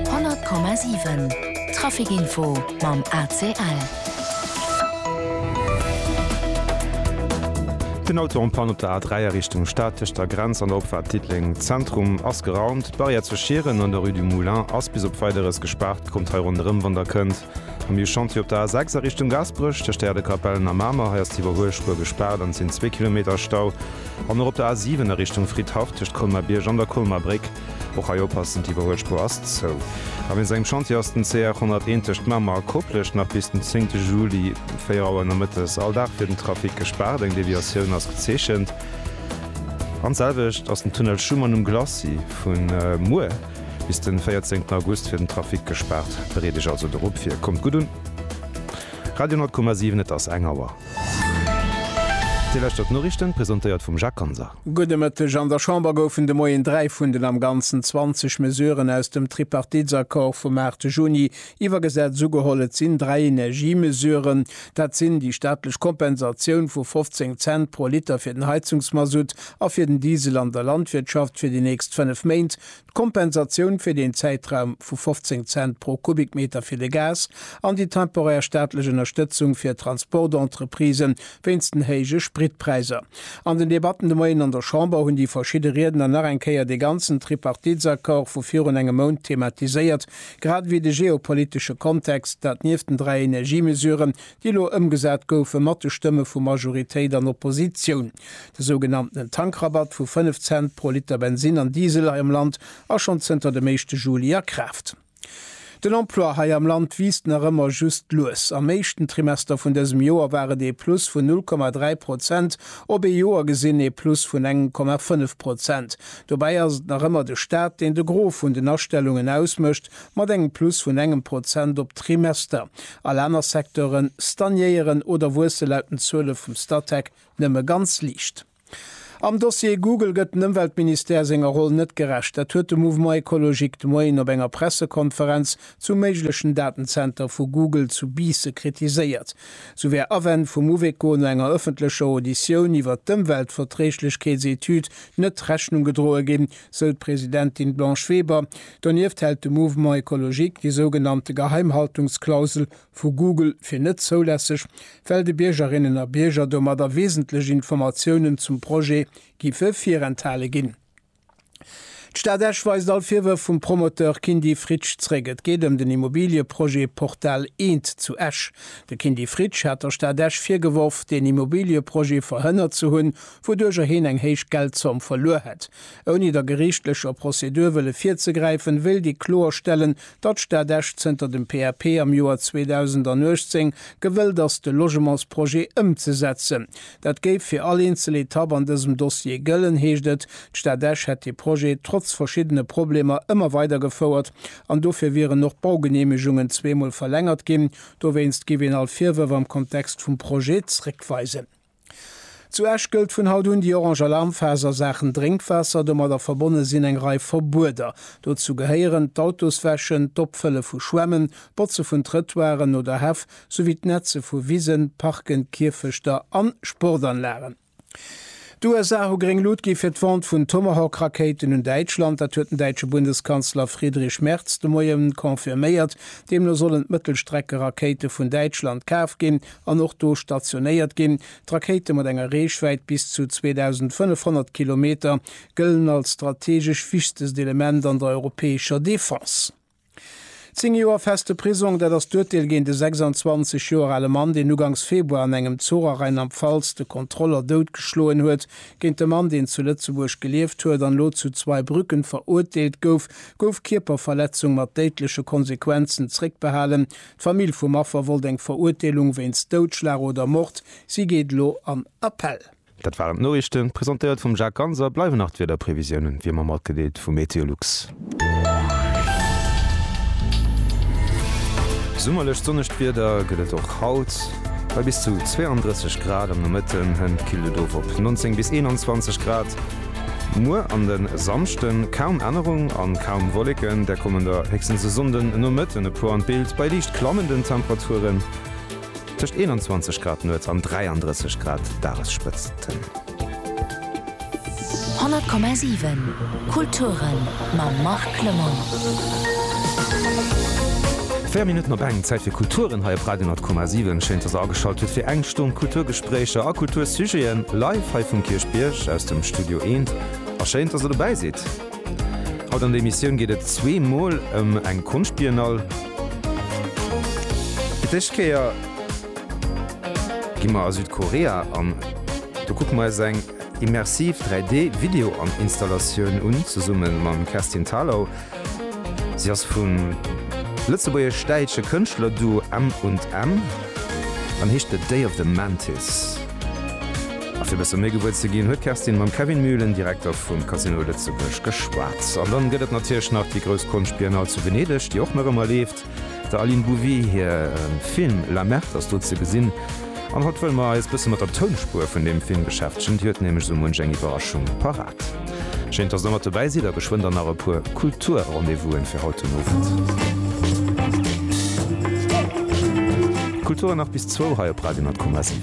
100,7 Trafic Info mam ACL. Den Auto en Panne op der A3 a Richtung Stad, tëscht der Grenz an der Opfaart Diddeleng Zentrum ass geraumt. D'Barrière zu Schieren un der Rue du Moulin ass bis op Weideres gespaart. Kommt hei ronderëm, wann der kënnt. Am New Chantier op der A6 a Richtung Gaasperech, tëscht der Äerdekapellen a Mamer, hei ass d'Iwwerhuelspuer gespaart an et sinn zwee Kilometer Stau. An och op der A7 a Richtung Fridhaff, tëscht Colmer-Bierg an der Colmer Bréck, och hei oppassen, d'Iwwerhuelspuer ass zou. A wéinst engem Chantier ass den CR 101 tëscht Mamer a Koplescht nach bis den 10 Juli 4 Auer nomëttes all Dag fir den Trafic gespaart, eng Deviatioun ass gezeechent. An d'selwecht ass den Tunnel Schuman um Glacis vu muer. bis den 14 August fir den Trafic gespaart. Bereet iech also dorop vir. Kommt gutt un. Radio 10,7 Et ass eng Auer. Dir lauschtert d'Noriichten, presentéiert vum Jacques Ganser. Gudde Mëtteg. An der Chamber goufen de Moien dräi vun den am Ganzen 20 Mesuren aus dem Tripartitsaccord vum 8 Juni Iwwergesat sou geholl, et sinn dräi Energiemesuren. Dat sinn déi staatlech Kompensatioun vu 15 Cent pro Liter fir den Heizungsmasutt a fir den Diesel an der Landwirtschaft fir déi nächst fënnef Méint, d'Kompensatioun fir deen Zäitraum vu 15 Cent pro Kubikmeter fir de Gas an déi temporär staatlech Ënnerstëtzung fir d'Transportentreprisen wéinst den héije Spritpräiser. An den Debatten de Moien an der Chamber hunn déi verschidde Riedner nach eng Kéier dee ganzen Tripartitsaccord vu virun engem Mount thematiséiert. Grad ewéi de geopolitesche Kontext, dat nieft den dräi Energiemesuren, déi elo ëmgesat goufen, mat de Stëmme vu Majoritéit an Oppositioun. De sougenanntenen Tankrabatt vu 5 Cent pro Liter Bensinn an Diesel hei am Land ass schonn zënter dem éischte Juli a Kraaft. Den Emploi hei am Land wiisst nach ëmmer just lues. Am éischten Trimester vun dësem Joer war et ee Plus vun 0,3 Prozent, op ee Joer gesinn ee Plus vun engem Komma 5 Prozent. Dobäi ass et nach ëmmer de Staat, deen de Gros vun den Astellungen ausmécht, mat engem Plus vun engem Prozent op Trimester. All aner Secteuren stagnéieren oder wuesse laut den Zuele vum Statec nëmme ganz liicht. Am Dossier Google gëtt den Ëmweltministère senger Roll net gerecht. Dat huet de Mouvement Ecologique de Moien op enger Pressekonferenz zum méiglechen Datenzenter vu Google zu Biisse kritiséiert. Sou wär Awänn vum Uveco no enger ëffentlecher Auditioun iwwert d'Ëmweltverträglechkeetsetüd net Rechnung gedroe ginn, sou d'Presidentin Blanche Weber. Donieft hält de Mouvement Ecologique déi sougenannte Geheimhaltungsklausel vu Google fir net zoulässeg, well de Biergerinnen a Bierger domadder wesentlech Informatiounen zum Projet giffe virenthale ginn. D'Stad Esch weist all Virwërf vum Promoteur Kindy Fritsch zréck. Et geet ëm den Immobilieprojet Portal Eent zu Esch. De Kindy Fritsch hat der Stad Esch virgeworf, deen Immobilieprojet verhënnert ze hunn, wouduercher heen eng héich Geldzomm verluer hätt. Ouni der geriichtlecher Prozedur wëlle virzegräifen, wéilt ee kloerstellen, datt d'Stad Esch zënter dem PAP am Joer 2018 gewëllt ass, de Logementsprojet ëmzesetzen. Dat géif fir all eenzel Etapp an dësem Dossier gëllen, heescht et. D'Stad Esch hätt dee Projet trotz verschiddene Problemer ëmmer weidergefouert an dofir wieren och d'Baugeneemegungen zweemol verlängert ginn. Dowéinst géif een all Virwërf am Kontext vum Projet zréckweisen. Zu Esch gëllt vun haut un déi orange Alarmphas a Saachen Drénkwaasser. Domadder verbonne sinn eng Rei Verbueder. Dozou gehéieren d'Autoswäschen, d'Opfëlle vu Schwämmen, d'Botze vun Trëtoiren oder Häff souwéi d'Netze vu Wisen, Parken, Kierfechter a Sportanlagen. D'USA hu gréng Lut gi fir d'Vente vun Tomahawk-Rakéiten un Däitschland. Dat huet den däitsche Bundeskanzler Friedrich Merz de Moie confirméiert. Deemno sollen d'Mëttelstreckerakéite vun Däitschland kaf ginn, an och do stationéiert ginn. D'Rakéite mat enger Reechwäit bis zu 2.500 Kilometer gëllen als strategesch wichtest Element an der europäescher Defense. Zéng Joer feste Prisong, dat ass d'Urteel géint e 26 Joer ale Mann, deen ugangs Februar an engem Zuch a Rheinland-Pfalz de Kontroller doutgeschloen huet. Géint de Mann, deen zu Lëtzebuerg gelieft huet an elo zu Zweibrücken verurteelt gouf, gouf Kierperverletzung mat déidleche Konsequenzen zréckbehalen, D'Famill vum Affer wollt eng Verurteelung wéinst Doudschlag oder Mord. Si geet elo an Appell. Dat waren d'Noriichten, presentéiert vum Jacques Ganser. Bleiwen nach d'Wiederprevisiounen, wéi ëmmer matgedeelt, vu Meteolux. Summerlech sonnegt Wieder gëtt et och haut, bei bis zu 32 Grad am Nomëtten. Hënt killt et of op 19 bis 21 Grad. Muer an den Samschden, kaum Ännerung an kaum Wolleken, der kommen der héchstens e Sonnden Nomëtten e puer an d'Bild bei liicht klammenden Temperaturen tëscht 21 Grad nuets an 33 Grad Dagesspëtzten. 100,7 Kulturen mam Marc Clement. 4 Minutten op eng, Zäit fir Kulturen hei op Radio Nordkoma 7. Schéin, dass der ageschalt hutt fir eng Stonn Kulturgespréicher a Kultursujeten live hei vum Kierchbierg aus dem Studio Eent. A schéin, dass der dobäi sidd. Haut an der Emissioun geet et zwee Mol ëm eng Konschtbiennale. Fir d'éischt Kéier gi mer a Südkorea an do kucke mer eis eng. Immersiv 3D Video an Installatioun un, zesumme mam Kerstin Thalau. Si ass vum lëtzebuergesch-däitsche Kënschtlerduo M und M an heescht The Day of the Mantis. A fir bësse méi gewuer ze ginn, huet d'Kerstin mam Kevin Mühlen, Direkter vum Casino Lëtzebuerg, geschwat. An dann gëtt et natierlech nach déi grouss Konschtbiennale zu Venedeg, déi och nach ëmmer leeft. Der Aline Bouwé hir Film La Merde ass do ze gesinn. An haut wëlle mer eis bësse mat der Tounspuer vun deem Film beschäftegen, déi huet nämlech esou munch eng Iwwerraschung parat. Schéin, dass der mat dobäi sidd a geschwënn dann nach e puer Kultur-Rendez-vousen fir haut den Owend. Kultur nach bis zwou hei op Radio Net Komma 7.